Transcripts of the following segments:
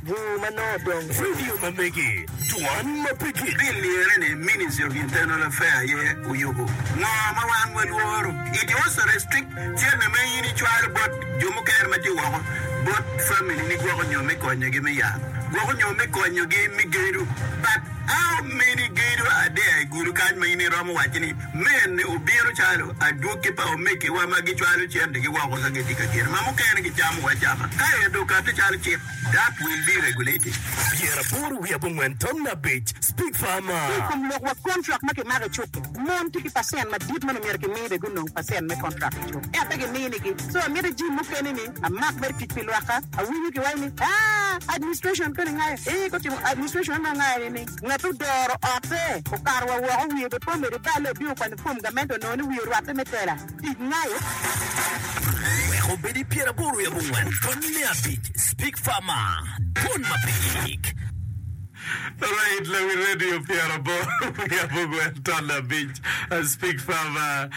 Bur ma nongo dong Radio ma megi, Dwan ma pigi. Pi lirre ni Ministry of Internal Affair aye oyubu ngo ma wan wa lworo. It also restrict cene ma in icwalo bot jo mukene ma tye woko bot family ni gwoko nyo me konyo gi me yat, gwoko nyo me konyo gi me gedo. But how many gedo are there i gulu kany ma in iromo waco ni men ni obino calo adwogi pa omege wa ma gicwalo cente gi woko ka gitye ka gedo ma mukene gicamo wa cama ka ento okate calo cik. Dark will be regulated, pyera aboro wiye abongwen tamna abic, Speak Farmer. Ki i kom lok wa kontrak ma kimako i cuk-ki, mon tye ki pacent madit ma myero kimi bene gunong pacent me kontrak i cuk, ento pe giminigi. So amito jim mukene ni amak mere tic pi lwakka. Awinyo kiwaco ni, Aa, administration koni ngayo? Ee, gutimo. Administration onongo ngayo nining? Ngat odoro otte, okato wa woko, wiye obipomere bal-le, obino kwanyo fom gamente onongo ni wiye orwatte me tela. Tic Nayo wek obed i pyeraboro i abongwen tonni me abic Speak Far Ma Dwon Mapig. Right na wi radio pyeraboro i abongwen tonni abic Speak Far Ma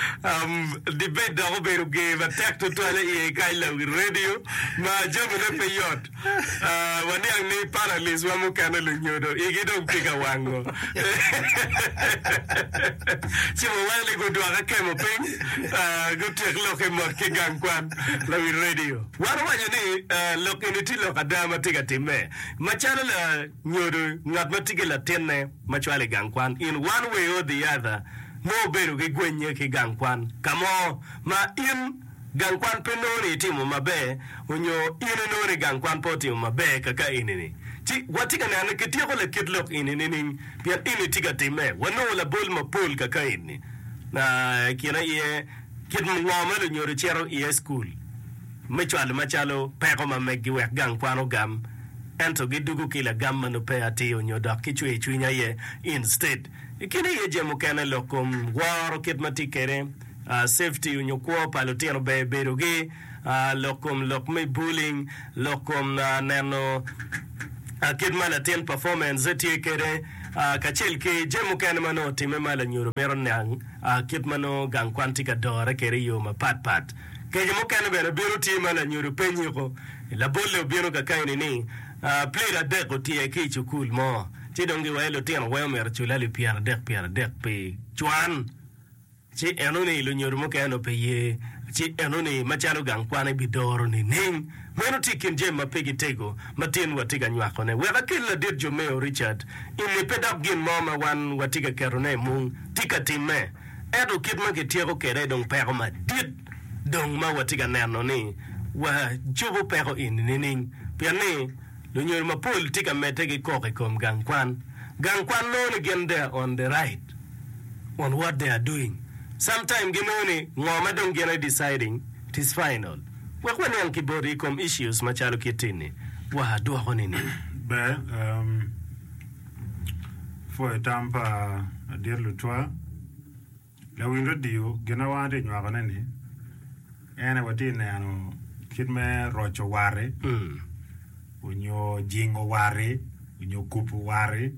Debate dok obedo ger matek tutwal i iye kany na wi radio ma jamine pe yot. Waniang ni panelists wa mukene lunyodo igi dong tye ka wango. Ci wawene gudwoke kemo piny, gutyek lokke mot ki gang kwan lawi radio. Wan owaco ni lok eni tye lok ada ma tye ka timme. Macalo lanyodo ngat ma tye ki latinne ma cwalo i gang kwan, in one way or the other nongo obedo gigwennye ki gang kwan ka mo ma in Gang kwan pe nongo ni itimo maber onyo in inongo ni gang kwan pe otimo maber kaka enini. Ci watye ka neno ni kityeko lakit lok eni nining? Pien eni tye ka timme. Wanongo labol mapol kaka eni. Na, i kin aye, kit ngo ma lunyodo cito iye i cukul me cwalo macalo peko ma meggi wek gang kwan ogam, ento gidugo ki lagam ma nongo peya atir onyo dok gicweyo cwiny aye instead. I kin aye jami mukene lok kom woro kit ma tye kede. safety onyo kwo pa lutino ber bedo gi lok kom lok me bullying lok kom neno kit ma latin performance ne tye kede kacel ki jami mukene ma nongo otime ma lanyodo mito niang kit ma nongo gang kwan tye ka dore kede i yo mapat pat kece mukene bene bino tye ma lanyodo pe nyiko labolle obino ka keni ni plate adek otyer ki cukul mo ci dong giwayo lutino weng omyero cule alip pyera dek pyera dek pi cwan. Ci enoni lunyodo mukene onongo pe ye, ci enoni macalo gang kwan ebidoro nining? Meno tye i kin jami ma pe gitego ma tinwa tye ka nywakone. Wek akelli ladit Jomeo Richard i lippe dok gin mo ma wan watye ka ketone i mung tye ka timme. Ento kit ma kityeko kwede dong peko madit dong ma watye ka neno ni wacobo peko eni nining? Pien ni Lunyodo mapol tye ka medde ki koko i kom gang kwan. Gang kwan nongo ni gin they are on the right on what they are doing. Sometime ginongo ni ngo ma dong gin aye deciding it is final. Wek waniang ki boti i kom issues macalo kit eni, wa dwoko nining? Ber, um, pwoyo tam pa Adit Lutwa Lawil radio gin ma wan atye ka nywako ne ni en aye watye ka neno kit me roco wati onyo jingo wati onyo kubu wati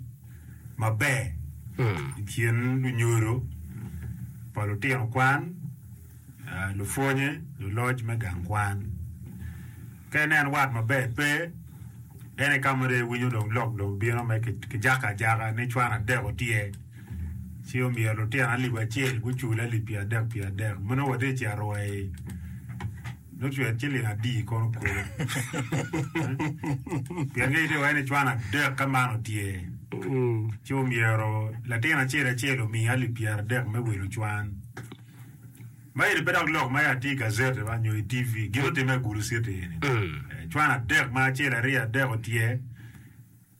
maber i kin lunyodo pa lutino kwan lupwonye luloc me gang kwan ka ineno wat maber pe en aye kama dong iwinyo lok dong bino me kijako ajaka ni cwan adek tye. Ci omyero lutino alip acel gucul alip pyer'adek pyer'adek. Ma nongo watye ka cito wa i nongo cwet ciling adi kono kulu. Pien ka itye iwaci ni cwan adek ka man otye, ci omyero latin acel acel omi alip pyer'adek me wilo cwan. Ma eni pe dok lok ma ya tye i gazeti ba nyo i TV. Gin otime i Gulu citi eni. Cwan adek ma acel aryo adek otye.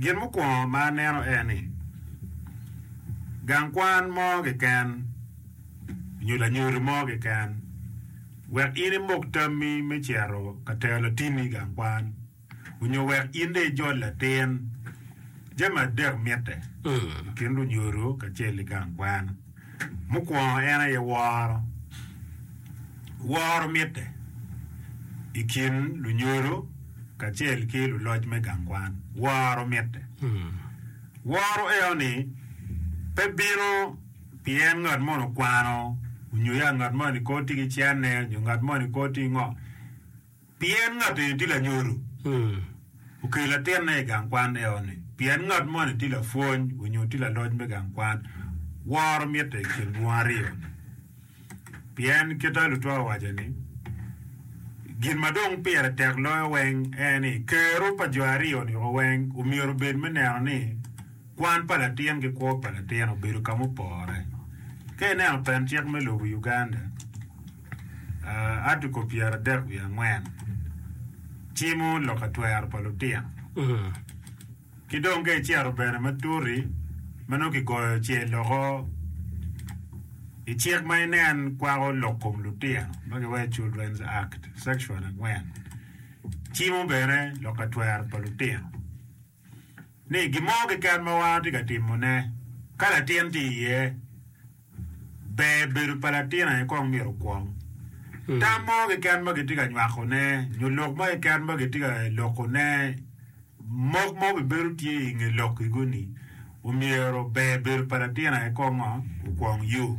Gin mukwongo ma aneno en ni gang kwan mo keken nyo lanyodi mo keken wek in imok tammi me cito ka tero latinni i gang kwan onyo wek in dong ijol latin. Jami adek mitte i kin lunyodo kacel ki gang kwan. Mukwongo en aye woro. Woro mitte i kin lunyodo kacel ki luloc me gang kwan. Woro mitte. Woro eno-ni pe bino pien ngat moni okwano onyo ya ngat moni kor tye ki cene onyo ngat moni kor tye ki ngo. Pien ngat eni tye lanyodo, okelo latinne i gang kwan eo-ni, pien ngat moni tye lapwony onyo tye laloc me gang kwan, woro mitte i kin dwong aryo-ni. Pien kite lutwa owaco ni, Gin ma dong pire tek loyo weng en ni, kero pa jo aryo-ni oweng omyero obed me neno ni kwan pa latin ki kwo pa latin obedo ka mupore. Ka ineno pen cik me lobo Uganda, Article pyeradek wiye angwen cimo lok atwero pa lutino ki dong ka icito bene ma tuti ma nongo kigoyo ce loko i cik ma inen kwako lok kom lutino ma kiwaco ni Children's Act section angwen cimo bene lok atwero pa lutino. ni gin mo keken ma wan watye ka timone ka latin tye iye, ber bedo pa latin aye kong myero okwong. Tam mo keken ma kitye ka nywakone nyo lok mo keken ma kitye ka lokone, mok mo bibedo tye i nge lokkigo-ni. Omyero ber bedo pa latin aye kor ngo okwong yo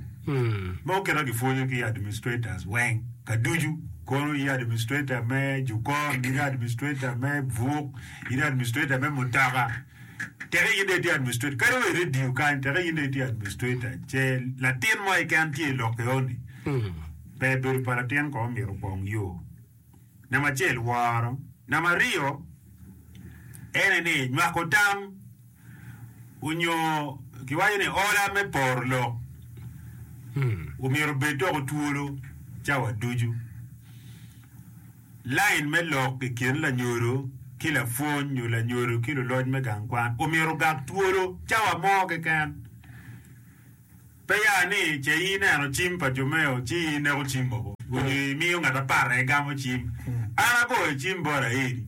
ma oketo gipwonyo ki administrators weng ka ducu kono ye administrator me jukon in administrator me buk in administrator me mutoka teke in dong itye administrator kadi wa i radio kany teke in dong itye administrator ce latin mo keken tye i lokke oni ber bedo pa latin kong myero okwong yo. Namba acel, woro. Namba aryo, ene ni nywako tam onyo kiwaco ni ola me poro lok omyero obed doko twolo cawa ducu. Line me lok i kin lanyodo ki lapwony nyo lanyodo ki luloc me gang kwan omyero ogak twolo cawa mo keken. Pe ya ni ce ineno cim pa jo meo ci ineko cim mogo onyo imiyo ngat apara aye gamo cim. An agoyo cim bot Aidi.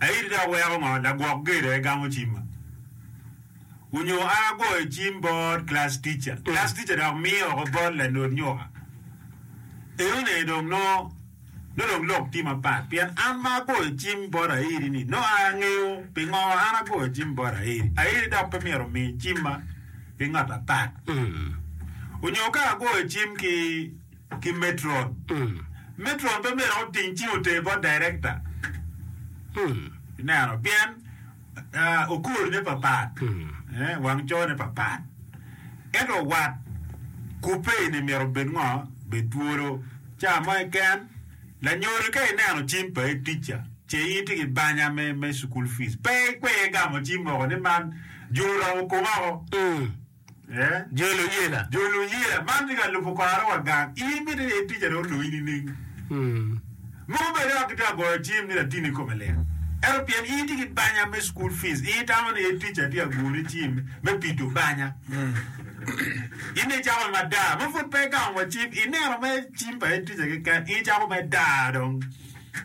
Aidi dok weko ngo lagwok gedo aye gamo cimma. Onyo an agoyo cim bot class teacher, class teacher dok miyo oko bot lanod nyuka. Eone dong nongo. Nongo dong lok tye mapat, pien an ma agoyo cim bot Aeri-ni, nongo an angeyo pingo an agoyo cim bot Aeri. Aeri dok pe myero omi cimma ki ngat atat. Onyo ka agoyo cim ki metron, metron pe myero oting cim oter bot director. Ineno? Pien. okolone papat, wang cone papat. Ento wat kubbe eni myero obed ngo? Bed twolo. Ca mo keken, lanyodo ka ineno cim pa head teacher ce in itye ki banya me school fees, pe ikwer gamo cim moko ni man jur oromo koma woko. Jo luyela man tye ka lubo kwaro wa gang. In mitte ni itic ane oloyi nining? Mogo bed wek kitye ka goyo cim ni latinni kome lit, ento pien in itye ki banya me cukul pic, in itamo ni en ticca tye ka goni cim me pido banya. In dong icako ma daa ma pud pe igamo wa cim, ineno mere cim pa en ticca keken, in icako me daa dong.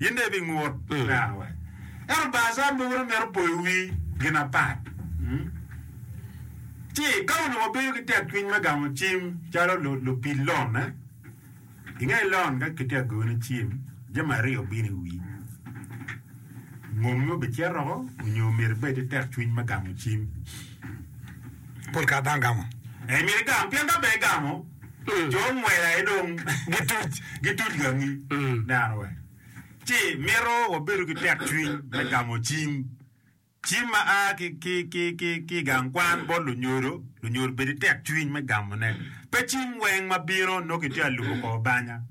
Gin dong ibingut neno wa. Ento bar can mogo dong mito poyo wi gin apat. Ci ka onongo wabedo ki tekcwiny me gamo cim calo lupid lonne, i nge lon ka kitye ka gone cim, jami aryo bino i wi, ngommi obicito oko nyo myero ibed ki tekcwiny me gamo cim? Pol kare dano gamo. Ee, myero igam pien ka pe igamo, Jo ngwec aye dong gituc, gituc gangi neno wa ci mito wabedo ki tekcwiny me gamo cim, cim ma a ki i gang kwan bot lunyodo. Lunyodo bed ki tekcwiny me gamone. Pe cim weng ma bino nongo kitye ka lubo kor banya.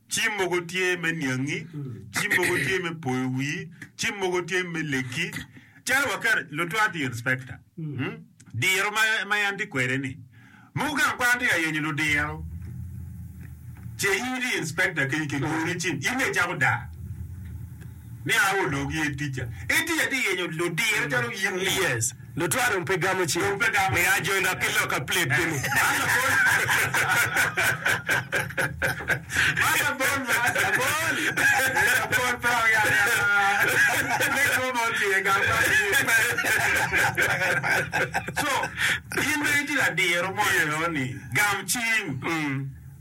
Cim mogo tye me niangi, cim mogo tye me poyo wii, cim mogo tye me leki. Calo waketo, lutwak tye inspector. Hmm? Diro ma, ma en tye kwede ni, mogo gang kwan tye ka yenyo ludiro. Ce in itye inspector kenyo kigoni cim, in ne icako daa. Ni a ologi e tica. Itica tye yenyo ludiro calo in ni. Yes. Lutwa dong pe gamo cing me ajenda ki lok apilep gini. Man labol man, labol. Eh, labol pe wang yat yat man. Me kwo ma otwi e gang man iyee pe. So, in bene itye ka diro mon eno ni gam cing.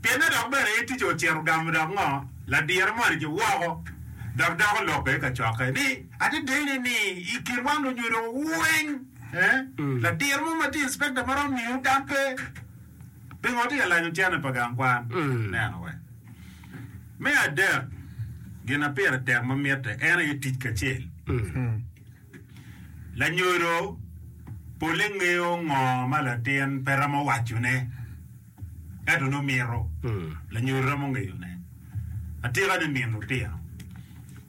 Pienne dok bene en ticce ocito gamo dok ngo? Ladire moni ki woko dok doko lokke kacokke ni. Adedeni ni i kinwa lunyodo weng, ladir mo ma tye inspector ma romo miyowu tam pe. Pingo watye ka lanyo cene pa gang kwan neno wek? Me adek, gin ma pire tek ma mitte en aye tic kacel. Lanyodo pole ngeyo ngo ma latin pe romo wacone. ento nongo mito lanyodi romo ngeyone. Atika ni min lutino?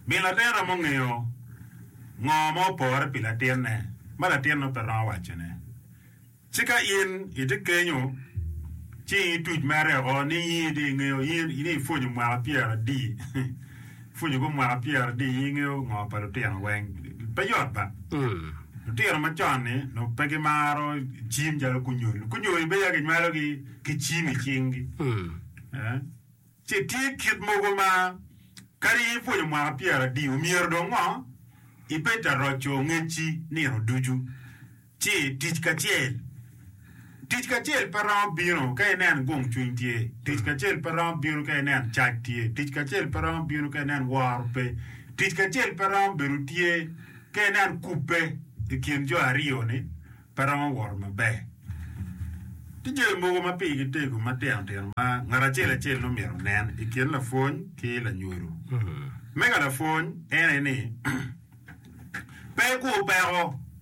Min latin romo ngeyo ngo ma opore pi latinne ma latinno pe romo wacone? Ci ka in itye kenyo ci ituc mere woko ni in ingeyo ni ipwonyo mwaka pyeradi? pwonyo gu mwaka pyera adi i ngeyo ngo pa lutino weng? Pe yot ba. Lutino ma con ni nongo pe gi maro cim calo kunyol. Kunyol ni be ya ki nywalo gi ki cim i cing gi. Ci tye kit mogo ma kadi i pwonyo mwaka pyera adi omyero dong ngo i bed ta roco ngeci nino ducu. Ci tic kacel. Tic kacel pe romo bino ka inen gung cwiny tye. Tic kacel pe romo bino ka inen cac tye. Tic kacel pe romo bino ka inen woro pe. Tic kacel pe romo bedo tye ka inen kubbe i kin jo aryo-ni pe romo woro maber. Tye jami mogo ma pigi tego matino tino ma ngat acel acel nongo myero onen i kin lapwony ki lanyodo. Mega lapwony en aye ni, Pe ikur peko.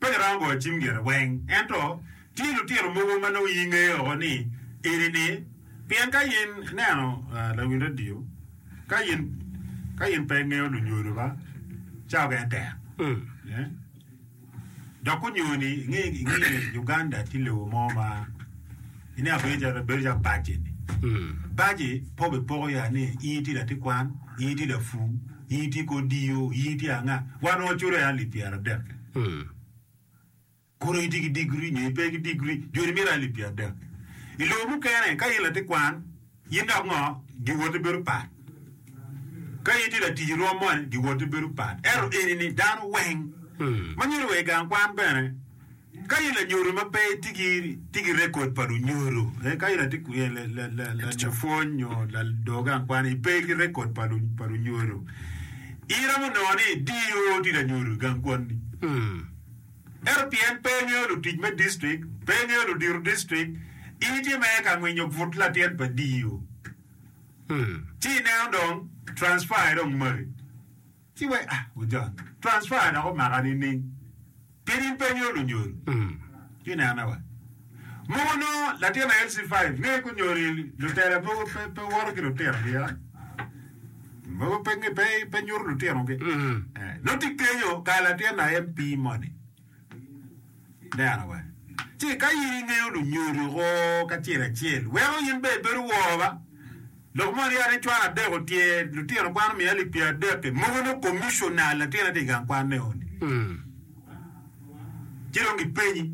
Pe giromo goyo cim gire weng. Ento tye lutino mogo ma nongo iyi ngeye oko ni eni ni, pien ka in ineno lawiny radio, ka in ka in pe ingeyo lunyodo ba, cawa keken tek. Dok gunyoni inge inge Uganda tye lobo mo ma Ine abedo calo pe bedo calo paci-ni. Paci pe obipoko ya ni in itye latikwan, in itye lapur, in itye ki odiyo, in itye anga. Wan waculo alip pyeradek. Kono in itye ki digri nyo ipe ki digri, joni mito alip pyeradek. I lobo mukene ka in latikwan, In dok ngo? Giwoti bedo pat. Ka in tye latic i rwom moni, giwoti bedo pat. Ento eni ni dano weng ma nyodo wa i gang kwan bene, ka in lanyodo ma pe itye ki tye ki rekod pa lunyodo, eh, ka in ati eh, la- la- la- la- lapwony nyo lado gang kwan, ipe ki rekod pa lu- pa lunyodo, iromo nongo ni DO tye lanyodo i gang kwanni. Ento pien pe ingeyo lutic me distrik, pe ingeyo ludito distrik, in itye mere ka ngwinyo but latyet pa DO. Ci ineno dong transfer aye dong maki. Ci wek ah gujon, transfer dok omaka nining? Pien in pe ingeyo lunyodo. Ci inene wa. Mogo nongo latin aye LC five nge ku nyoni lutela mogo pe pe woto ki lutino gi ya mogo pe nge pe pe nyuto lutino gi eh no ti kenyo ka latin aye MP moni neno wa ci ka in ingeyo lunyodo ko kacel acel weko in be ibedo woo ba Lok ma orye ni cwalo adek otye, lutino kwano miya alip pyeradek-ki, mogo nongo komiconal latin aye tye i gang kwan me odi. Ci dong gipenyi,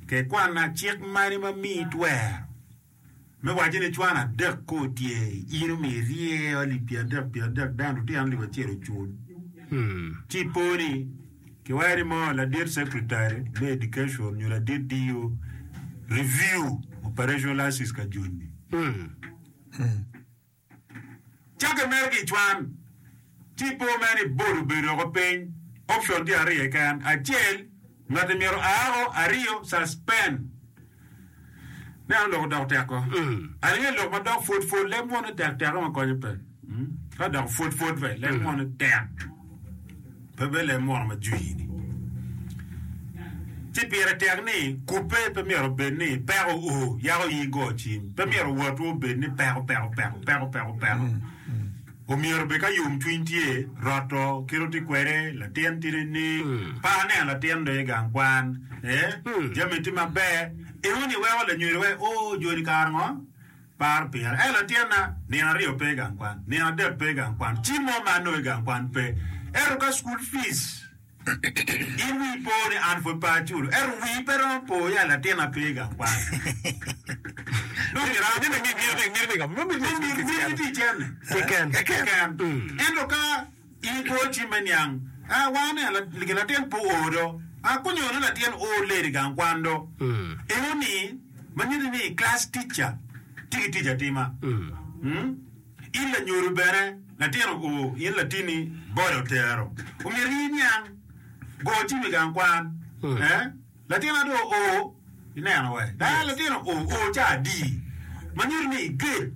Ke kwanna cik mani ma miyi twero me waco ni cwano adek kong otye, in omiyo irye alip pyeradek pyeradek dano lutino alip acel ocul? Ci ipo ni. Kiweri mo, ladit Secretary me Education nyo ladit DO, review operationalises ka joni. Cako i mere ki i cwan, ci ipo mere ni Board obedo woko piny. Option tye ariyo keken, acel, ngati myero aa woko, ariyo, suspend. Me an lok odoko tekko. Aringo ilok ma dok pwod pwod leb moni tek teko ma konyo pe. Ka dok pwod pwod be leb moni tek. Pe be leb moni ma jwi ni. Ci pire tek ni kupe pe myero obed ni peko o yako yi go cim. Pe myero wotwu obed ni peko peko peko peko peko peko. Omyero bed ka yomcwiny tye, roto kit oti kwede, latin tidi ni paka neno latin dong igang kwan e, jami ti maber, inongo ni iweko lanyweri wai oo joni kara ngo? Par pira, ei latinna, nino aryo pe igang kwan, nino adek pe igang kwan, cim mo ma anongo igang kwan pe, ento ka school fees. In wii po ni an pud pe aculo, ento wii pe romo po ya latin ape i gang kwan. Nongo iram ni nongo imiti imiti ka nongo imiti imiti ki cene. Imiti cene keken keken. Ento ka in pe ocim me niang, a wango ni la- gi latin pe oo do, a kunyo ni latin oo late i gang kwan do. Eno ni ma nyuti ni class teacher tye ki tic atima. Mm. In lanyodo bene, latin-ni o, in latinni bole otero, omyero iyi niang go tim i gang kwan. Eh, latina do o, ineno wa, ka latin-ni o, o ca adi, ma nyuto ni i gate,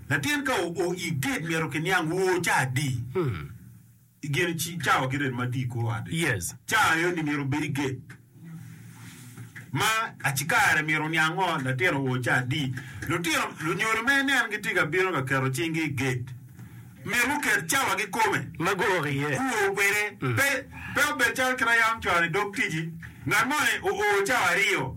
latin ka o, o i gate myero kiniang o ca adi. I gene ci cawa ki ret ma tye i kor ot-ti. Yes. Cawa aye-ni myero obed i gate ma acikare myero oniang ngo latin owo ci adi. Lutino, lunyodo ma inen gitye ka bino ka keto cinggi i gate, myero guket cawa kikome. Ma gurok iye. Guwo kwede. Pe, pe obed calo kit a yam cwalo i dog tic-ci, ngat moni oo cawa aryo.